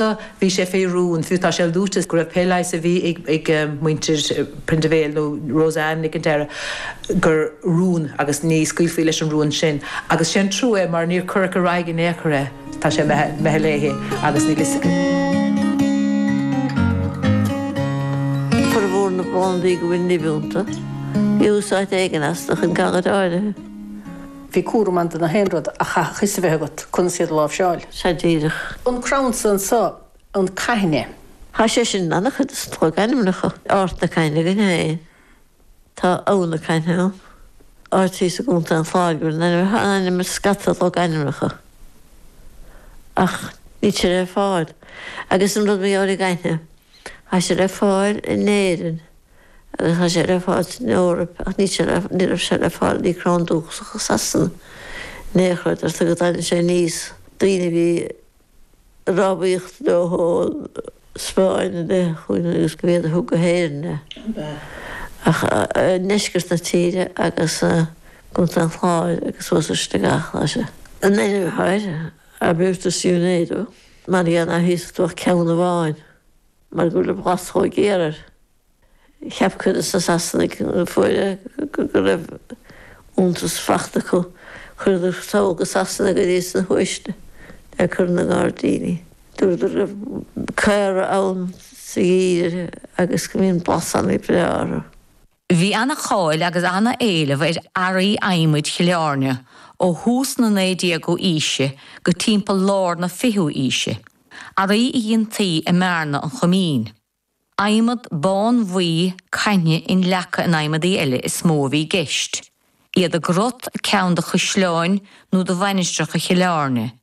Sea, bhí sé fé rún, fiú tá sé luaite go raibh pé leigheas a bhí ag muintir Prendeville, nó Rose Anne Nic an Deire, gur rún agus ní scaoilfí leis an rún sin. Agus sé'n trua é mar níor cuireadh ar aghaidh in aon chor é. Tá sé imithe léithe agus níl 'fhios. Formhór na bplandaí go bhfuil nimh iontu, bhí úsáid éigin astu chun galair áirithe. Bhí cúram ann do na haon rud ach chaithfeadh fhios a bheith agat conas iad a láimhseáil. Sea, díreach. An crann san anseo, an caithne. Tá sé sin in an-chuid de na logainmneacha. Ard na Caithne againn féin. Tá Abha na Caithne ann, áit thíos i gContae an Chláir a bhfuil an ainm, tá an ainm ar scata logainmneacha ach níl sé le fáil. Agus an rud mar gheall ar an gcaithne, tá sé le fáil in Éirinn. agus tá sé le fáil san Eoraip ach níl sé le ní raibh sé le fáil bhí crann dúchasach i Sasana néal chreid ar tugadh d'ainneoin sé níos daoine a bhí i rámhaíocht leo ón Spáinn a bheith chugainn agus ba iad a thug go hÉirinn é ach i ndeisceart na tíre agus i gContae an Chláir agus suas an Sligeach ach sé an ainm atá air Arbutus Unedo mar gheall ná híosfá ach ceann amháin. Mar go raibh blas chomh géar air, cheap cuid de na Sasanaigh a fuair é go raibh iontas fachta acu. Chuireadar sall go Sasana go dtí sna huaisle a chur ina ngairdíní. Dúradar go raibh caora ann sa gheimhreadh agus go mbíonn blasanna breátha orthu. Bhí an-cháil agus an-éileamh ar earraí adhmaid Chill Airne ó thús na 19ú aoise go timpeall lár na 20ú aoise, earraí a dhéantaí i mBearna an Choimín. Adhmad bánbhuí caithne inleagtha in adhmadaí eile is mó a bhí i gceist, iad i gcrot ag ceann de chaisleáin nó de mhainistreacha Chill Airne,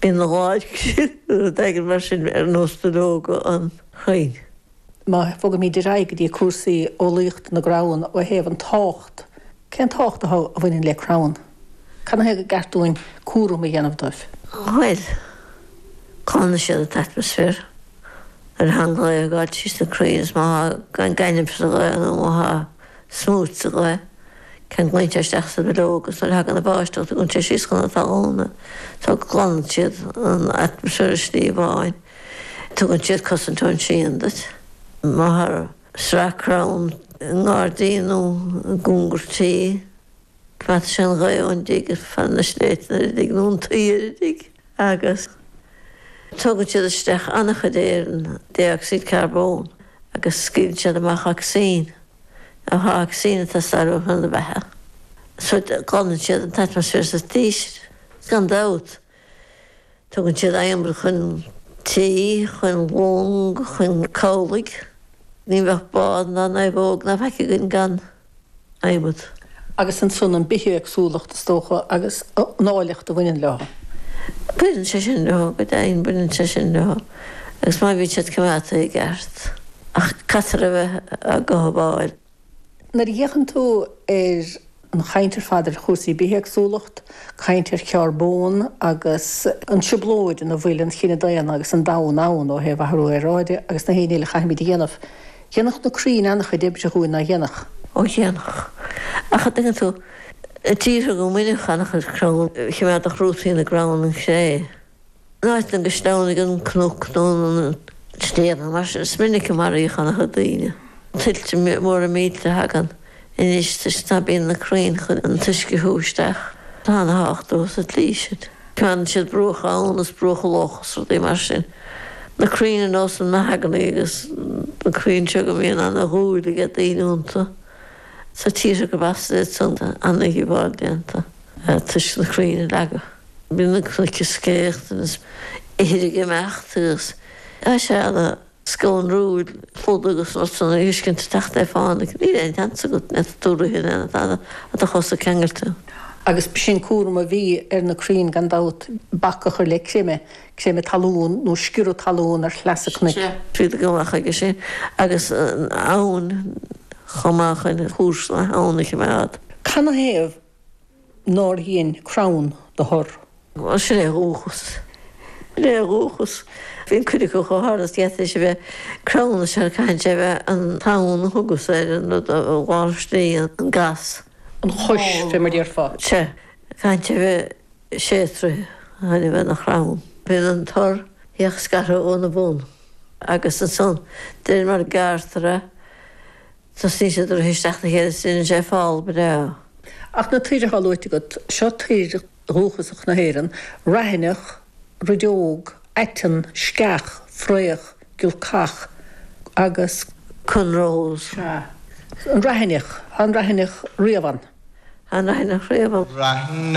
Bíonn láidre sin nuair a dtagann mar sin ar nós duilleoga an chrainn. Má bhogaimid ar aghaidh go dtí cúrsaí eolaíochta na gcrann ó thaobh an tábhacht, cén tábhacht a bhaineann le crann? Canathaobh gur ceart dúinn cúram a dhéanamh dóibh? Bhuel, glanann siad an t-atmaisféar. Tá an ghaoth ag gabháil tríos na crainn is má tá gainimh sa ghaoth nó má tá smúit sa ghaoth. Ceanglaíonn sé isteach sa bhileog agus nuair a thagann an bháisteach tugann sé síos chun an talúna so go glanann siad an atmaisféar i slí amháin. Tugann siad cosaint ón síon duit. Má tá sraith crann i ngairdín nó i gcóngar tí, coimeádann sé an ghaoth ón dtigh is fanann na sléibhte nuair a ligeann an tsaoire di. agus tugann siad isteach an-chuid aeir an dé-ocsaíd carbón agus scaoileann siad amach ocsaigin amach ocsaigin atá ag teastáil uainn chun na beatha so glanann siad an t-atmaisféar sa tír is gan dabht tugann siad adhmad chun tí chun long chun cabhlaigh ní bheadh bád ná naomhóg ná faic againn gan adhmad. agus ansin an bithéagsúlacht, is dócha, agus an áilleacht a bhaineann leo. Baineann sé sin leo, go deimhin baineann sé sin leo, agus má bhíonn siad coimeádta i gceart. Ach caithfear a bheith á gcothabháil. Nuair a fhéachann tú ar an chaint ar fad ar chúrsaí bithéagsúlacht, caint ar charbón agus an trioblóid ina bhfuil an chine daonna agus an domhan ann ó thaobh athrú aeráide agus gach aon ní a chaithfimid a dhéanamh Dhéanfadh na crainn an-chuid oibre dhúinn ná déanfadh. Ó dhéanfadh. Ach a' dtuigeann tú, i dtíortha go mbaineadh an-chuid crann, chimeádfadh rútaí na gcrann an chré. In áiteanna go sleamhnaigh an cnoc nó an sliabh nó mar sin, is minic a maraíodh an-chuid daoine, tuilte móra millte a thagann. Anois toisc ná bíonn na crainn chun an t-uisce a shú isteach, tá ana thábhacht leo sa tslí sin. Fanann siad bruacha abhann is bruacha locha is rudaí mar sin. Na crainn ar nós an mahogany agus na crainn seo go mbíonn ana dhúil aige daoine iontu sna tíortha go bhfástar iad san tá ana dhíobháil déanta toisc na crainn a leagadh. Bíonn na cnoic is céachta is ithir ag imeacht agus tá sé ana scanrúil ar fad agus nuair a thosnaíonn an t-uisce ag teacht le fánaidh níl aon sheans agat neart dúraithe in aon fad a do chosa ceangailte. Agus b'shin cúram a bhí ar na crainn gan dabht, bac a chur le creimeadh, creimeadh talún nó sciorradh talún ar shleasa cnoic. tríd a gcuma chuige sin agus an abhainn chomh maith chun chúrsa na habhann a choimeád. Canathaobh nár dhein crann do thor. Mar sin é a dhúchas. Sin é a dhúchas. Bíonn cuid acu chomh hard is gheata is a bheadh crann is caitheann sé a bheith an tamhan a thugas ar an rud a ghlanfistíonn an gas. an chois fé mar déarfá. Sea. Caitheann sé a bheith sé troithe chun a bheith ina chrann. Bíonn an tor beag scartha óna bun agus ansan de réir mar a gearrtar é. Tosnaíonn sé ag druidim isteach 'na chéile is deineann sé fál breá. Ach na toir athá luaite agat, seo toir dhúchasacha na hÉireann, raithineach, rideog, aiteann, sceach, fraoch, giolcach agus. Conrós. Sea. An raithineach. Thá an raithineach riamh ann. Thá an raithineach riamh ann.